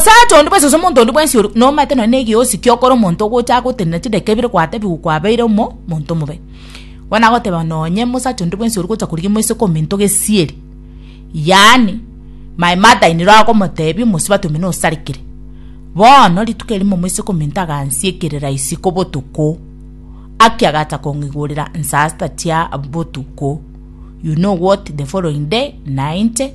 Omosacha onde bwensi gose omonto onde bwensi ore nomanyete nonya negeosi kiokora omonto ogocha agotenena chidaka ebere gwatebiwa kwabeire omo monto omobe. Bono nagoteba nonye omosacha onde bwensi ore gocha korigia omoise komento gesieri, yaani my mother in law agomotebia omosubati omino osarekire. Bono rituko erimo omoise komento agansia ekerera isiko botuko, aki agacha kong'igurera nsasta chia botuko, you know what the following day nainche.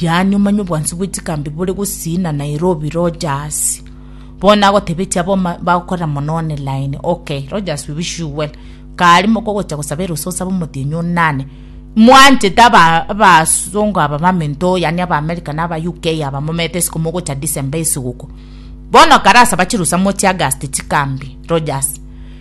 Yaani omanye obwansu bwe chikambi bore gosiina Nairobi Rogers. Bono agotebetia abo ma- bagokorera mono online. Okay, Rogers we wish you well. Kare mokogocha gosaba erusa osabe omotienyi onane. Mwanchete aba abasongo aba bamento yaani aba America na aba UK aba momete isiko mogocha December esiguko. Bono kare asaba chirusa mochie August chikambi Rogers.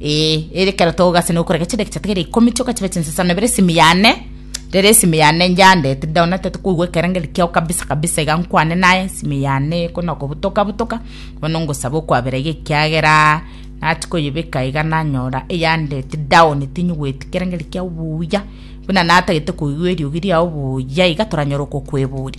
Ee, ere ekero togase na okorega chinde egechato kere ikomi chioka chibe chinsesano ebere esimi yane rero esimi yane njande tinde ona tete koigwa ekerengeri kiao kabisa kabisa iga nkwane naye esimi yane ekona okobutoka butoka bono ngosaba okwabera iga ekiagera nachi koyebeka iga nanyora eyandeti down tinyigweti ekerengeri kiao buya buna natagete koigwa eriogi riao buya iga toranyora okokwebori